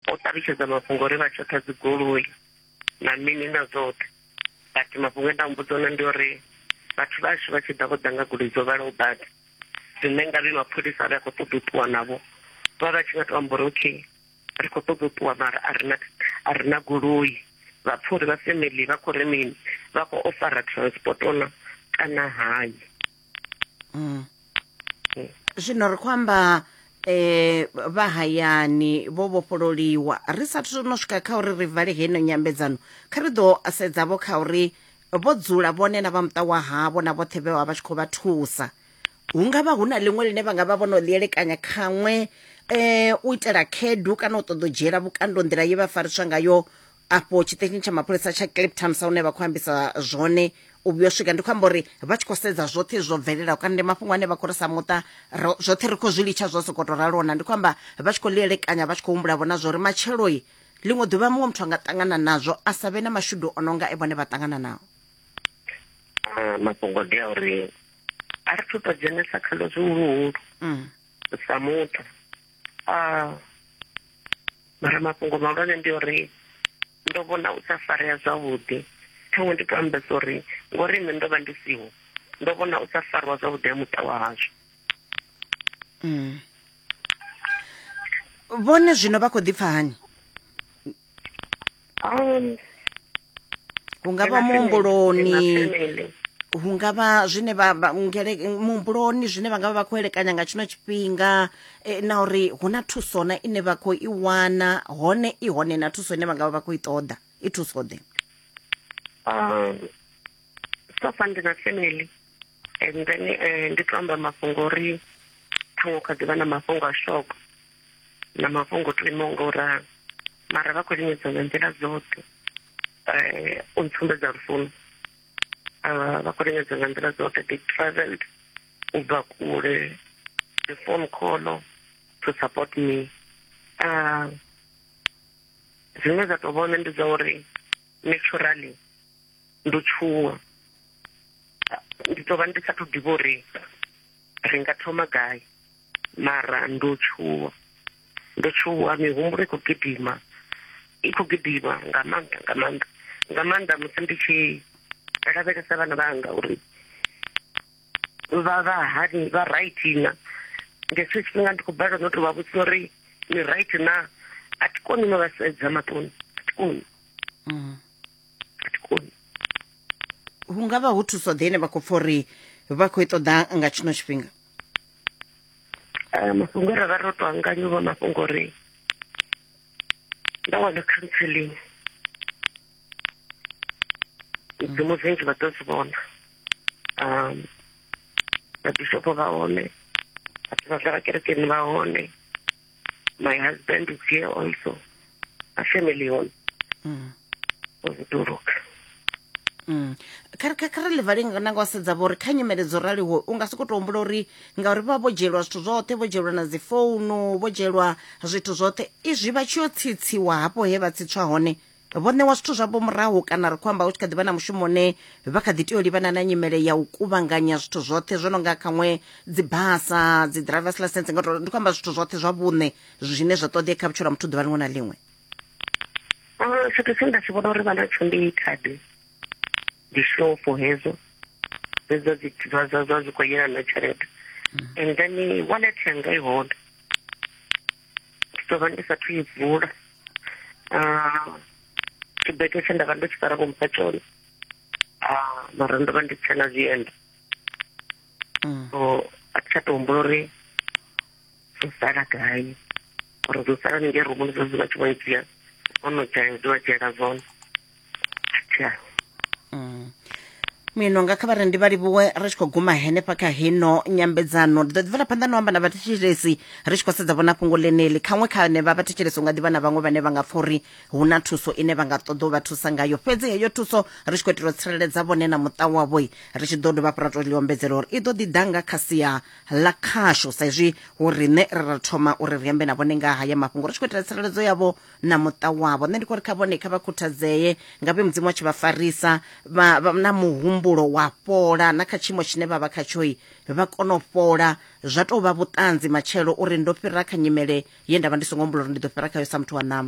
o ṱalutshedza mafhungo uri vha tshoṱha dzigoloi na mini na zwoṱhe but mafhungo e nda mmbudza ona ndi uri vhathu vhashu vha tshi ḓa vho ḓa nga goloi dzo vhalaho badi zwine nga vhe mapholisa a vhe a khou ṱoḓa u ṱuwa navho vha vha tshi nga to amba uri okay ri khou ṱoḓa u ṱuwa mara a rina a rina goloi vha pfha uri vha family vha khou ri mini vha khou ofara transport ona kana hai mm. eh. zwino ri khou amba eh vha hayani vho vhofhololiwa ri sathu no swika kha uri ri vale heno nyambedzano kha ri ḓo sedza vho kha uri vho dzula vhone na vha muṱa wa havho na vhoṱhe vhe vha vha tshi khou vha thusa hu nga vha hu na ḽiṅwe ḽine vha nga vha vho no ḽi elekanya khaṅwe um u itela khedu kana u ṱoḓa u dzhiela vhukando nḓila ye vha fariswa ngayo afho tshiṱeshini tsha mapholisa tsha cape town sa hune vha khou ambisa zwone u vhuyo swika ndi khou amba uri vha tshi khou sedza zwoṱhe zwo bvelelaho kana ndi mafhungo ane vha khou ri sa muṱa ro- zwoṱhe ri khou zwi litsha zwo sokou to ralona ndi khou amba vha tshi khou ḽi elekanya vha tshi khou humbula vhona zwori matshelo i ḽiṅwe ḓuvha muṅwe muthu a nga ṱangana nazwo a sa vhe na mashudu o no nga e vhone vha ṱangana nao Ah, mafhungo ndi a uri a ri thu to dzhenesa khalo zwihuluhulu Mm. sa muthu ah, mara mafhungo mahulwane ndi uri ndo vhona u sa farea zwavhuḓi ṱhaṅwe ndi to ambesa uri ngori nṋe ndo vha ndi siho ndo vhona u sa fariwa zwavhuḓi ha muṱa wa hashu mm. vhone zwino vha khou ḓipfa hani Um, hungavha muhumbuloni hungavha zwine vha muhumbuloni zwine vha nga vha vha khou elekanya nga tshino tshifhinga eh, na uri hu na thuso na ine vha khou i wana hone i hone na thuso ine vha nga vha vha khou i ṱoḓa i thuso ḓe um so far ndi na family and then eh, ndi to amba mafhungo uri ṱhaṅwe kha ḓivha na mafhungo a shoko na mafhungo to imaho nga u ralo mara vha khou lingedza nga nḓila dzoṱhe eh, u ntsumbedza lufuno ah, vha khou lingedza nga nḓila dzoṱhe they travelled u bva kule the phone call to support me ah, zwine zwa tou vhona ndi dza uri naturally ndo tshuwa ndi tou vha ndi sa thu ḓivha uri ri nga thoma gai mara ndo tshuwa ndo tshuwa mihumbulo i khou gidima i khou gidima nga maanḓa nga maanḓa nga maanḓa musi ndi tshi lavhelesa vhana vhanga uri vha vha hani vha right na nga hetsho tshifhinga ndi khou balelwa no tou vha vhudzisa uri ni right na a thi koni no vha sedza maṱoni a thi koni mm. a thi koni hu nga vha ho thuso ḓe ine vha khou pfa uri vha khou i ṱoḓa nga tshino tshifhinga eh, mafhungo ra vha ro to anganya u vha mafhungo uri nda wana counseling dzimu zinzhi vha ḓo zwi vhona um vhabishopo vha hone vhathu vha zwa vha kerekeni vha hone My husband is here also. A family home. Mm. Ovutuluka. Mm. kha ri livhali nanga wa sedza vho uri kha nyimele dzo raliho u nga si khou tou humbula uri ngauri vha vho dzhielwa zwithu zwoṱhe vho dzhielwa na dzi founu vho dzhielwa zwithu zwoṱhe izwi vha tshi yo tsitsiwa hafho he vha tsitswa hone vho ṋewa zwithu zwavho murahu kana ri khou amba hu tshi kha ḓi vha na mushumo une vha kha ḓi tea u livhana na nyimele ya u kuvhanganya zwithu zwoṱhe zwo no nga khaṅwe dzi basa dzi drivers license nga ndi khou amba zwithu zwoṱhe zwa vhuṋe zwine zwa ṱoḓea kha vhutshilo ha muthu ḓuvha liṅwe na liṅwe tshithu tshine nda tshi vhona uri vha natsho ndi khadi ndi shofo hedzo hedzo zwa zwi khou yelana na tshelede mm. and then wallet yanga i hone ndi ḓo vha ndi sathu i vula ah, tshibete tshe nda vha ndo tshi fara vho mpha tshone ah, mara ndo vha ndi tshe na zwienda mm. so a thi tsha to humbula uri zwo sala gai uri zwo sala ningei rumuni zwo zwi vha tshi vho i dzhia ono dzhia zwi vha dzhiela zwone mm. mino nga kha vharendi vha livhuwe ri tshi khou guma henefha kha hino nyambedzano ndi ḓo ḓivela phanḓa no amba na vhathetshelesi ri tshi khou sedza vhona fhungo ḽeneli khaṅwe kha ne vha vhathetshelesi u nga ḓivha na vhaṅwe vhane vha nga pfa uri hu na thuso ine vha nga ṱoḓa u vha thusa ngayo fhedzi heyo thuso ri tshi khou itela u tsireledza vhone na muṱa wavhoi ri tshi ḓo dovha fhura to ḽi ombedzela uri i ḓo ḓi ḓa nga kha sia ḽa khasho sa izwi hu riṋe ri ra thoma uri ri ambe na vhone nga haya mafhungo ri tshi khou itela tsireledzo yavho na muṱa wavho nṋe ndi khou ri kha vhone kha vha khuthadzee nga vhe mudzimu wa tshi vha farisa na muhumbulo wa fhola na kha tshiimo tshine vha vha khatshoi vha kona u fhola zwa tou vha vhuṱanzi matshelo uri ndo fhira kha nyimele ye nda vha ndi songo humbula uri ndi ḓo fhira khayo sa muthu wa ṋama